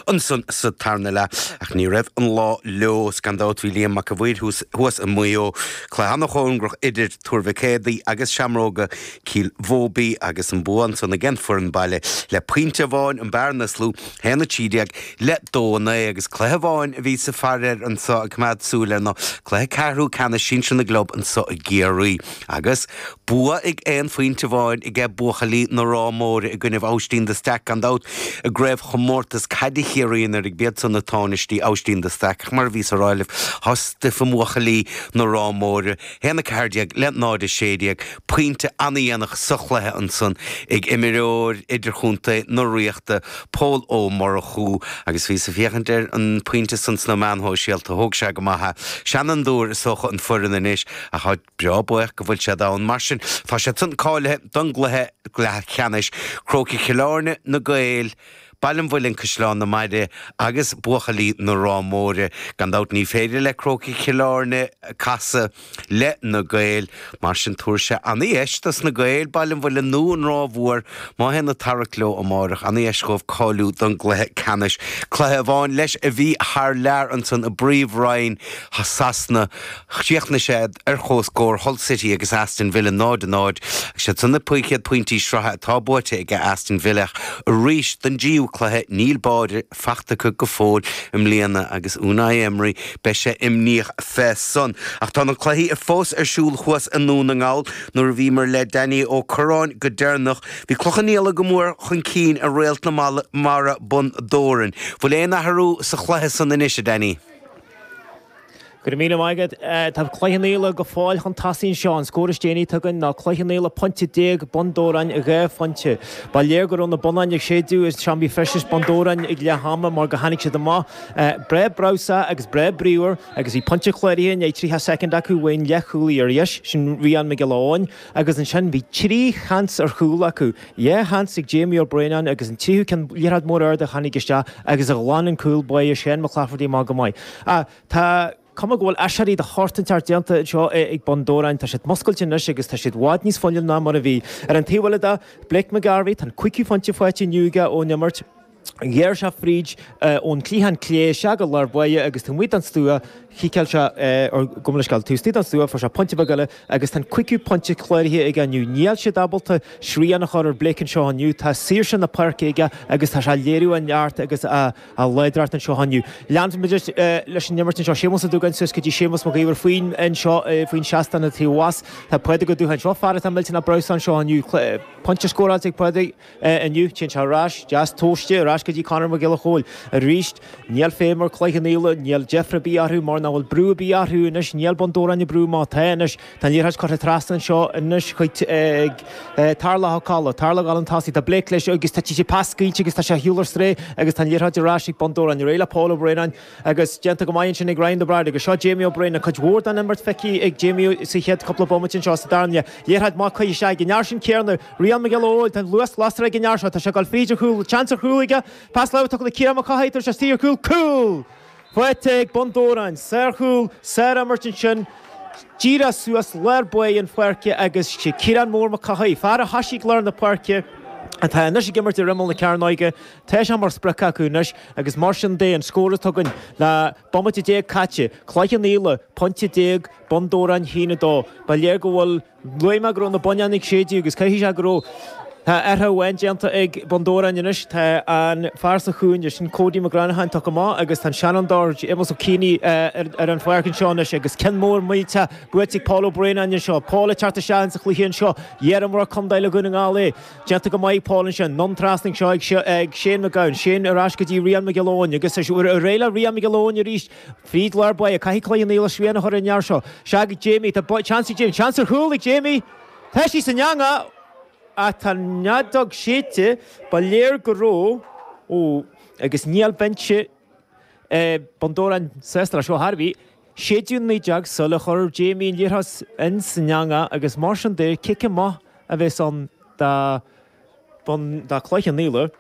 Ansan sa tarna leath, ach ní raibh an lá leo, 's gan dabht bhí Liam Mac a' Mhaoir thuas i Maigh Eo, cluiche ana chóngarach idir Tuar Mhic Éadaigh agus Seamróga Cill Bhóbí agus an bua ansan ag an bhfoireann baile le pointe amháin an bearna is lú, haon a trí déag le dó a naoi, agus cluiche amháin a bhí sa Pháirc anso ag coimeád súil ar na cluichí ceathrú ceannais sinsir na gclub anso i gCiarraí. Agus bua ag aon phointe amháin aige buachaillí na Ráth Móire i gcoinnibh Abhaistín de Staic gan dabht i gcraobh chomórtas caide Chiarraí anuraidh ab iad san na táinistí, Abhaistín de Staic ach mar a bhí sa ráille tá stuif i mbuachaillí na Ráth Móire, haon a ceathair déag le náid a sé déag, pointe ana-dhéanach sa chluiche ansan ag imreoir idirchontae na Ríochta, Pól Ó Murchú agus bhíos a' féachaint ar an pointe san sna meáin shóisialta thóg sé go maith é. Seanfhondúir is dócha an fhoireann anois ach tá. Bheadh buíoch go bhfuil siad ann, mar sin. Tá siad san cáilithe don gcluiche leathcheannais, Crócaigh Chill Airne, Na Gaeil, Baile an Mhuilinn, Caisleán na Maire agus Buachaillí na Ráth Móire. Gan dabht ní féidir le Crócaigh Chill Airne casadh le Na Gaeil, mar sin tabharfaidh sé ana dheis dos Na Gaeil, Baile an Mhuilinn nó an Ráth Mhór má théann a tarrac leo amáireach, ana dheis dhóibh cáiliú don gcluiche ceannais. Cluiche amháin leis a bhí thar lear ansan i bPríomh Roinn Shasana. Chríochnaigh sé ar chomhscór Hull City agus Aston Villa 0, 0. Agus iad san na céad pointí sraithe atá buaite ag Aston Villa arís don dtríú cluiche, níl báire faighte acu go fóill i mbliana agus Unai Emery, beidh sé imníoch fé san. Ach tá na cluichí fós ar siúl thuas i nDún na nGall. Nuair a bhíomar le Danny Ó Curráin go deireanach, bhí Cloich Cheann Fhaola go mór chun cinn ar Réalt na Mara Bun Dobhráin. Bhfuil aon athrú sa chluiche san anois, a Danny? Go raibh míle maith agat. Tá Cloich Cheann Fhaola go fóill chun tosaigh anseo. An scór is déanaí atá againn ná Cloich Cheann Fhaola pointe déag, Bun Dobhráin dhá phointe. Ba léir go raibh na bonnáin ag séideadh i seomraí feistis Bhun Dobhráin ag leath ama mar gur tháinig siad amach breá breabhsá agus breá bríomhar agus bhí pointe cláraithe i ndiaidh 30 soicind acu uaidh an leathchúlaí ar dheis, sin Rián Mac Giolla Eoin. Agus ansin bhí trí sheans ar chúl acu, dhá sheans ag Jamie Ó Braonáin agus an tríú ceann, liathróid mór ard a tháinig isteach agus a ghlan an cúl báire Shane McClafferty amach go maith. Ach tá cuma go bhfuil aiséirí de shórt inteacht déanta anseo ag Bun Dobhráin. Tá siad muscailte anois agus tá siad i bhfad níos fuinniúla ná mar a bhí. Ar an taobh eile de, Blake McGarvey, tá an cúigiú phointe faighte inniu aige ón imirt. Ghearr sé fríd ón chliathán clé, isteach go lár báire, agus taobh amuigh den stua, chiceáil sé ar gcumleisceál taobh istigh den stua, fuair sé pointe beag eile, agus tá an cúigiú pointe cláraithe aige inniu. Níl siad ábalta srian a chur ar Blake anseo inniu, tá saoirse na páirce aige agus tá sé ag léiriú a neart agus a láidreacht anseo inniu. Leanfaimid leis an imirt anseo. Séamus Ó Dúgáin suas go dtí Séamus Mac Iomhair faoin anseo faoin seastán taobh abhus. Tá Pádraig Ó Dúgáin, seo fear atá millteanach breabhsánta anseo inniu. Pointe scóráilte ag Pádraig. inniu. Téann sé ar ais, deas tomhaiste, ar ais go dtí Conor Mac Giolla Chóill arís. Níl feidhm ar Chloich Cheann Fhaola, níl deifre ar bith orthu mar nach bhfuil brú ar bith orthu anois, níl Bun Dobhráin ag brú má tá anois. Tá an liathróid curtha trasna anseo anois chuig Tarlach Ó Cadhla. Tarlach ag dul chun tosaigh, tá Blake leis agus tá sé pas scaoilte agus tá sé ar shiúl ar strae agus tá an liathróid ar ais ag Bun Dobhráin, ar aghaidh le Pól Ó Braonáin agus déanta go maith ansin ag Ryan de Bairéad agus seo Jamie Ó Braonáin. Cuid mhór den imirt feicthe ag Jamie sa chéad cúpla bomaite anseo sa dara leath. Liathróid maith curtha isteach ag an fhear sin céanna, Rian Mac Giolla Eoin, Tá an luas lasrach ag an fhear seo, tá sé ag dul fríd an chúl, seans ar chúl aige, pas láimhe tugtha do Ciarán Mac Cárthaigh, tabhartas sárchúl, cúl! Faighte ag Bun Dobhráin, sárchúl, sárimirt ansin, díreach suas lár báire na páirce agus Ciarán Mór Mac Cárthaigh, fear a thoisigh lár na páirce, atá anois ag imirt ar imeall na cearnóige, tá sé mar sprioc acu anois agus mar sin de an scór atá againn le bomaite déag caite, Cloich Cheann Fhaola, pointe déag, Bun Dobhráin a haon a dó. Ba léir go bhfuil. Luaigh mé go raibh na bonnáin ag séideadh agus caithfidh sé go raibh. Tá athrú amháin déanta ag Bun Dobhráin anois. Tá an fear sa chúinne sin, Cody Mac Granacháin, tugtha amach agus tá an seanfhondúir, Séamus Ó Cianaigh, ar an pháirc anseo anois agus ceann mór millte buaite ag Paul Ó Braonáin anseo. Paul ag teacht isteach insa chluiche anseo. Iar-imreoir contae le Dún na nGall é. Déanta go maith ag Paul ansin. Anonn trasna anseo ag Shane McGowan. Shane ar ais go dtí Rian Mac Giolla Eoin agus ar aghaidh le Rian Mac Giolla Eoin arís. Fríd lár báire, caithfidh Cloich Cheann Fhaola srian a chur ar an fhear seo. Seo chuig Jamie, tá seans ag Jamie, seans ar chúl ag Jamie! Tá sí san eangach ach tá an fheadóg séidte, ba léir go raibh, ó, agus níl binse Bhun Dobhráin sásta leis seo ar chor ar bith, séideadh an fheadóg sula chuir Jamie an liathróid san eangach agus mar sin de, cic amach a bheas ann do Bhun, do Chloich Cheann Fhaola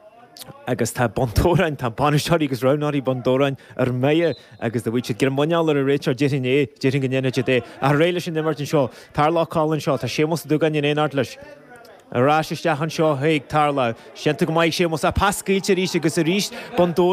agus tá Bun Dobhráin, tá bainisteoirí agus roghnóirí Bhun Dobhráin ar mire agus dá bhfaigheadh siad greim muineáil ar an réiteoir, déarfainn é, déarfainn go ndéanfadh siad é ach ar aghaidh leis an imirt anseo, Tarlach Coll anseo, tá Séamus Ó Dúgáin in éineacht leis, ar ais isteach anseo chuig Tarlach, is déanta go maith ag Séamus ach pas scaoilte arís agus arís, Bun Dobhráin.